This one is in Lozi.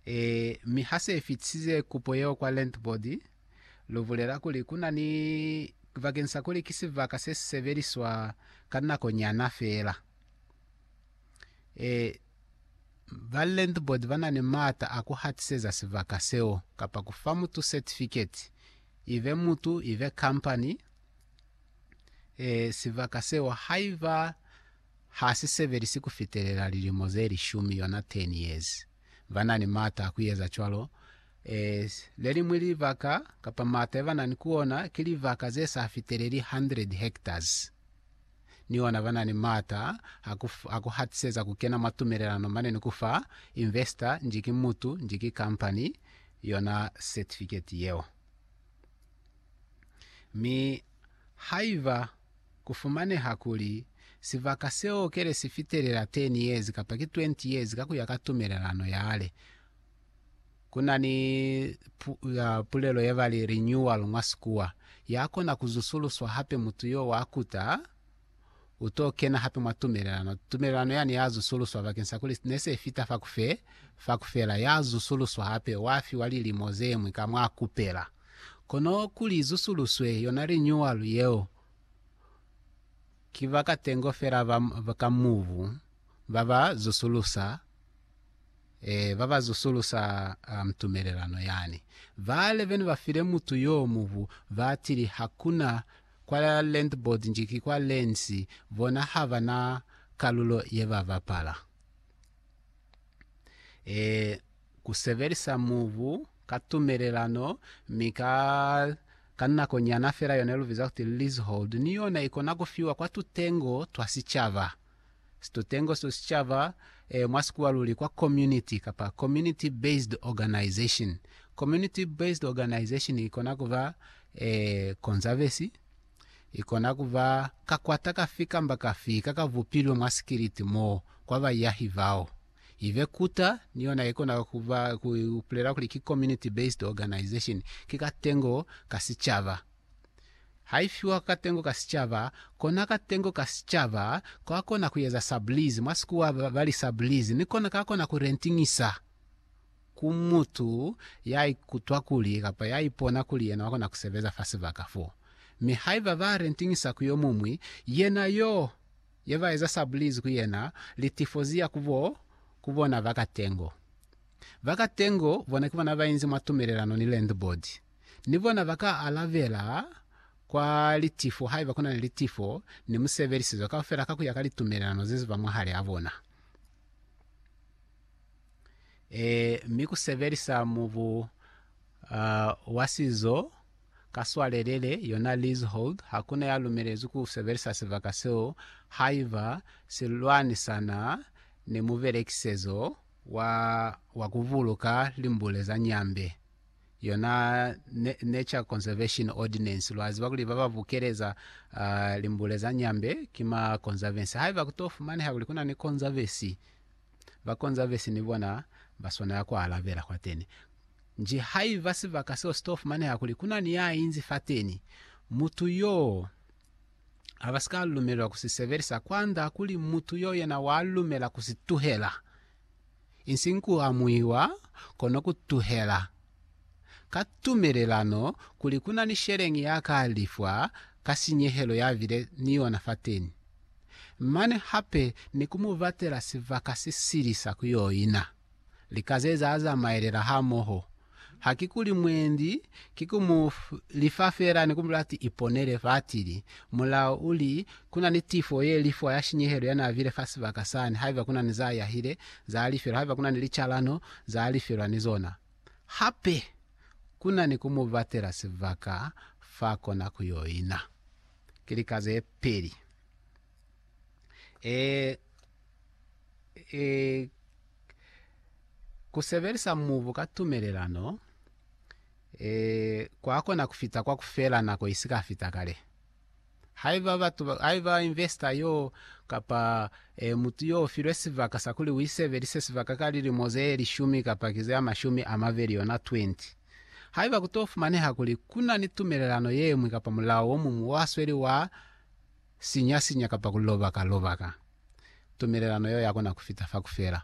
E, mi ha se fitisize kupo yeo kwa Rent Board, lu bulela kuli ku na ni, bakeng sa kuli ki sibaka se si sebeliswa ka nako nyana fela. E, ba Rent Board ba na ni maata a ku hatiseza sibaka seo, kapa ku fa mutu setifiketi, ibe mutu, ibe kampani, e, sibaka seo, haiba Ha si sebelisi ku fitelela lilimo ze lishumi, yona 10 years. Ba na ni m'ata a ku eza cwalo. Eh, le liñwi libaka, kapa m'ata ye ba na ni ku ona, ki libaka ze sa fiteleli 100 hectares. Ni ona ba na ni m'ata a ku, a ku hatiseza ku kena mwa tumelelano mane ni ku fa investor, nji ki mutu, nji ki kampani, yona certificate yeo. Mi haiba Ku fumaneha kuli, sibaka seo kele si fitelela 10 years kapa ki 20 years ka ku ya ka tumelelano yale. Ku na ni pulelo ye ba li renewal mwa Sikuwa, ya kona ku zusuluswa hape mutu yo wa kuta u to kena hape mwa tumelelano. Tumelelano yani ya zusuluswa bakeng sa kuli ne se fita fa ku fe, fa ku fela, ya zusuluswa hape, wa fiwa lilimo ze ñwi ka mwa kupela. Kono kuli zusuluswe yona linyuwalu yeo, ki bakatengo fela ba ka mubu ba ba zusulusa, ee, ba ba zusulusa tumelelano yani. Bale bene ba file mutu yo mubu, ba tili, Hakuna kwa Land Board nji ki kwa Lands, bona ha ba na kalulo ye ba bapala. Ee. ku sebelisa mubu ka tumelelano mi ka ka nako nyana fela yona lu biza kuti leasehold ni yona ikona ku fiwa kwa tutengo twa sicaba. Situtengo sito sicaba, e, mwa sikuwa luli kwa community kapa community based organization. Community based organization ikona kuba e, konzabesi, ikona kuba kakwata kafi kamba kafi ka ka bupilwe mwa sikiliti mo kwa bayahi bao. Ive Kuta ni yona ikona kuba ku bulela kuli ki community based organization, ki katengo ka sicaba. Ha ifiwa katengo ka sicaba, kona katengo ka sicaba kakona kueza sublease, mwa sikuwa bali sublease, ni kona kakona ku rentingisa ku mutu ya ikutwa kuli kapa ya ipona kuli yena wakona kusebeza fa sibaka fo. Mi haiba ba rentingisa ku yomuñwi, yena yo ye ba eza sabulizi ku yena li tifozi ya ku bo ku bona ba katengo. Ba katengo bona ki bona ba inzi mwa tumelelano ni landlord, ni bona ba ka alabela kwa litifo haiba ku na ni litifo ni musebelisizo kaufela ka ku ya ka litumelelano ze ziba mwahali a bona. Ee, mi ku sebelisa mubu wa sizo ka swalelele, yona leasehold, ha ku na ya lumelezwi ku sebelisa sibaka seo haiba si lwanisana ni mubelekisezo wa, wa ku buluka limbule za nyambe, yona Nature Conservation Ordinance. Lwa ziba kuli ba ba bukeleza limbule za nyambe ki ma konzavesi. Haiba ku to fumaneha kuli ku na ni konzavesi, ba konza vesi ni bona ba swanela ku alabela kwateni. Nji haiba sibaka seo si to fumaneha kuli ku na ni ya inzi fateni, mutu yoo a ba si ka lumelelwa ku si sebelisa kwand'a kuli mutu yoo yena wa lumela ku si tuhela, insiñ ku amuiwa, kono ku tuhela. ka tumelelano kuli ku na ni sheleñi ya ka lifwa ka sinyehelo ya bile ni yona fateni, mane hape ni ku mu batela sibaka se sili sa ku yo ina. Lika ze za zamaelela hamoho. Hakikuli mwendi ki ku mu lifa feela ni ku mu lati iponele fatili, Mulao u li, Ku na ni tifo ye li fa ya shinyehelo ya n'a bile fa sibaka sani haiba ku na ni z'a yahile, z'a lifelwa haiba ku na ni licalano z'a lifelwa ni zona. Hape ku na ni ku mu batela sibaka f'a kona ku y'o ina. Ki lika ze peli. Ee, ku sebelisa mubu ka tumelelano kwa kona ku fita kwa ku fela nako i si ka fita kale. Haiba batu, haiba investor yo kapa e, mutu yo ufilwe sibaka sa kuli uisebelise sibaka ka lilimo ze lishumi kapa ki ze amashumi amabeli yona 20, haiba kuto fumaneha kuli kuna ni tumelelano yemwi kapa mulao omuñwi wa sweli wa sinya sinya kapa kuloba ka loba ka, tumelelano yo yakona kufita fa kufela.